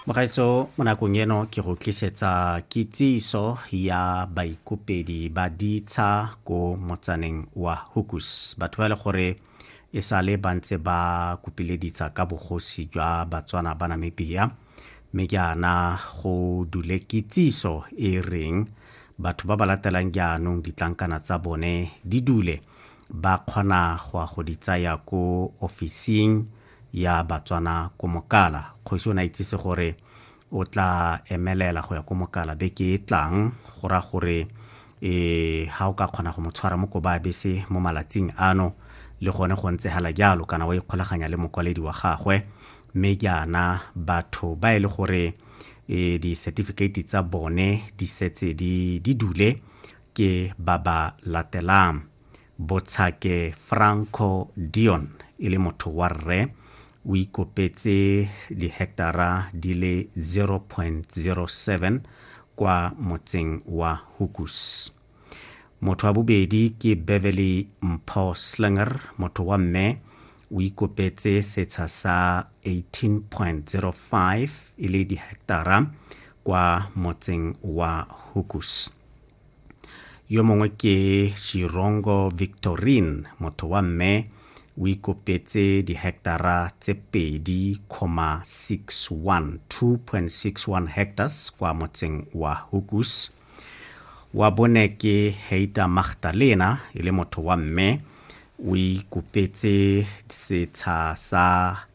mogaetso mo nakong eno ke go tlisetsa kitsiso ya baikopedi ba ditsha ko motsaneng wa hukus batho ba e le gore e sale ba ntse ba kopile ditsha ka bogosi jwa batswana ba namibia mme jaana go dule kitsiso e reng batho ba ba latelang jaanong ditlankana tsa bone di dule ba kgona go ya go di tsaya ko ofising ya batswana ko mokala kgosi o ne a itsise gore o tla emelela go ya ko mokala beke e tlang go ra gore e ha o ka kgona go mo tshwara mo koba bese mo malatsing ano le gone go ntse hala jalo kana wa ikgolaganya le mokwaledi wa gagwe mme jaana batho ba e le gore e di-certificate tsa bone di setse di dule ke ba ba latelang Botshake Franco Dion e le motho wa rre o ikopetse diheketara di le 0.07 kwa motseng wa Hukus. Motho wa bobedi ke Beverly Mpho Slinger, motho wa mme o ikopetse setsha sa 18.05 e le diheketara kwa motseng wa Hukus. yo mongwe ke chirongo victorine motho wa mme o ikopetse dihectara tse pedi comma 61 2.61 hectares kwa motseng wa hukus wa bone ke heita magdalena e le motho wa mme o ikopetse setsha sa